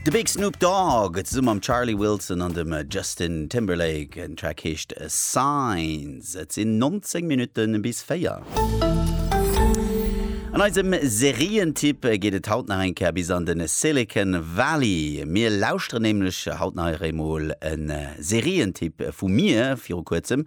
De Big Snoop Dogg zesumm mam Charlie Wilson an dem Justin Timberlake. Den Track heescht Signs. Et sinn 19 Minutten bis 4. An eisem Serientipp geet et haut nach eng Kéier bis an den Silicon Valley. Mir lauschteren nämlech haut nach emol en Serientipp vu mir viru kuerzem.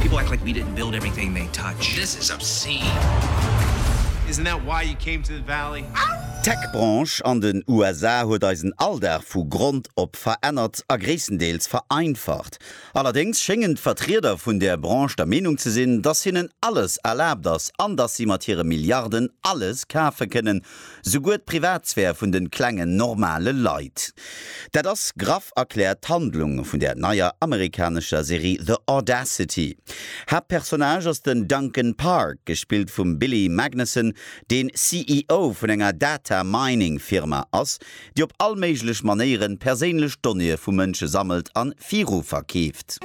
People act like we didn't build everything they touch. This is obscene. Isn't that why you came to the valley? D'Tech-Branche an den USA huet eisen Alldag vu Grond op verännert a gréisstendeels vereinfacht. Allerdéngs schéngen d'Vertrieder vun där Branche der Meenung ze sinn, dass hinnen alles erlaabt ass an dass si mat hire Milliarden alles kafe kënnen, Souguer d'Privatsphär vun de klengen, normale Leit. Dat ass graff erkläert d'Handlung vun der neier amerikanescher Serie The Audacity. Haaptpersonnage ass den Duncan Park, gespillt vum Billy Magnussen, deen CEO vun enger Data-Mining-Firma ass, déi op all méiglech Manéieren perséinlech Donnéeë vu Mënsche sammelt an viru verkeeft.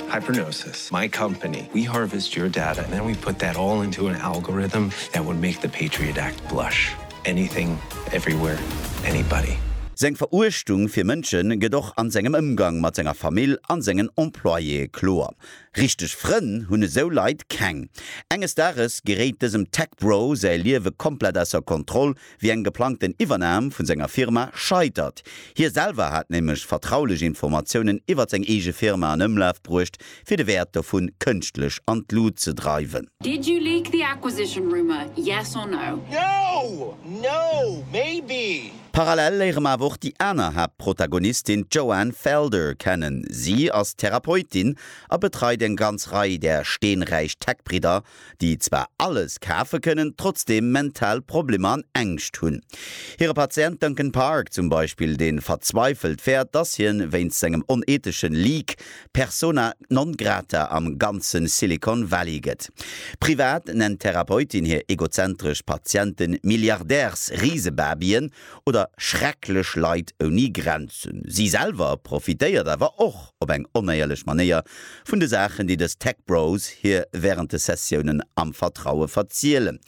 Hypernosis, my company, we harvest your data and then we put that all into an algorithm that would make the Patriot Act blush. Anything, everywhere, anybody. Seng Veruechtung fir Mënsche gëtt och an sengem Ëmgang mat senger Famill an sengen Employéë kloer. Richteg Frënn hunn esou Leit keng. Enges Dages geréit dësem Tech-Bro säi Liewe komplett ausser Kontroll, wéi eng geplangten Iwwernam vun senger Firma scheitert. Hie selwer hat nämlech vertraulech Informatiounen iwwert seng eege Firma an Ëmlaf bruecht, fir de Wäert dovun kënschtlech an d'Lut ze dreiwen. Did you leak the acquisition rumour, yes or no? No! No! Maybe! Parallel léiere mer awer och déi aner Haaptprotagonistin, d'Joanne Felder, kennen. Si ass Therapeutin a betreit eng ganz Rei där steenräich Tech-Bridder déi zwar alles kafe kënnen, trotzdeem mental Problemer an Ängscht hunn. Hire Patient Duncan Park zum Beispill, dee verzweifelt fäert, dass hien wéinst sengem oneethesche Leak persona non grata am ganze Silicon Valley gëtt. Privat nennt d'Therapeutin hir egozentresch Patiente Milliardärsrisebabyen, oder schrecklech Leit ouni Grenzen. Si selwer profitéiert awer och op eng onéierlech Manéier vun de Saachen, déi dës Tech Bros hir wärend de Sessiounen am Vertraue verzielen.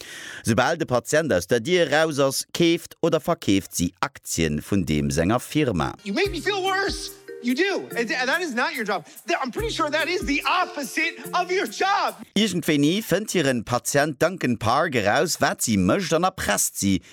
Soubal de Patient aus der Dier eraus ass, keeft oder verkeeft si Aktien vun deem senger Firma. You make me feel worse, you do, and that is not your job, I'm pretty sure that is the opposite of your job! Iergendwéini fënnt hiren Patient Duncan Park eraus, wat si mécht an erpresst si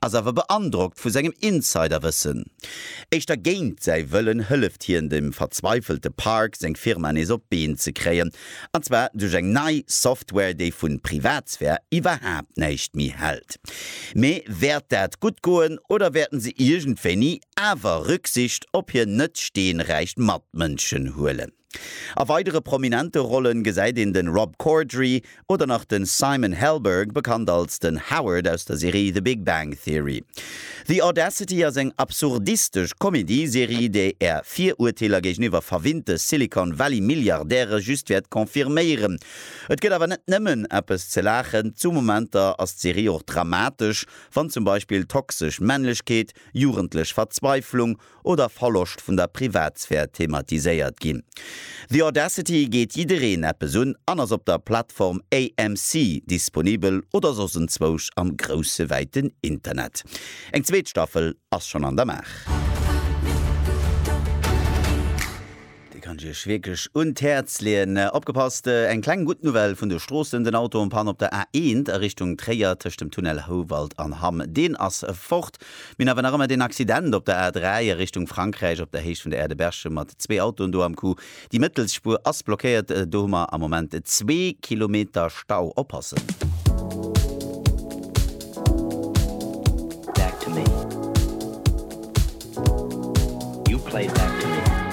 ass awer beandrockt vu sengem Insiderwëssen. Éischter géint säi Wëllen hëlleft hien dem verzweifelte Park, seng Firma nees op d'Been ze kréien. An zwar duerch eng nei Software, déi vu Privatsphär iwwerhaapt näischt méi hält. Mee wäert dat gutt goen oder wäerten se iergendwéini awer Rücksicht op hir net steenräich Matmënschen huelen? A weidere prominente Rollen gesäit een den Rob Corddry oder nach den Simon Helberg, bekannt als den Howard aus der Serie The Big Bang Theory. The Audacity ass eng absurdistesch Comedy-Serie, déi är Virurteeler géigeniwwer verwinnte Silicon Valley Milliardäre just wäert confirméieren. Et gëtt awer net nëmmen eppes ze laachen, zu Momenter ass d'Serie och dramatesch, wann zum Beispill toxesch Männlechkeet, jugendlech Verzweiflung oder Verloscht vun der Privatsphär thematiséiert ginn. The Audacity geet jiddereen eppes un an ass op der Plattform AMC disponibel oder soss enzwousch am grousse wäiten Internet. Eng zweet Staffel ass schonn an der Maach. Dee kann ech Iech wierklech un d'Häerz leeën. Opgepasst, eng kleng gutt Nouvelle vun de Stroossen, Den Auto en Panne op der A1 a Richtung Tréier tëscht dem Tunnel Houwald an Hamm, deen ass fort. Mir hunn awer nach ëmmer deen Accident op der A3 a Richtung Frankräich op der Héicht vun der Aire de Berchem mat zwee Autoen do am Coup. Déi mëttels Spuer ass blockéiert, do hu mer am Moment zwee Kilometer Stau. Oppassen! Back to me. You play back to me.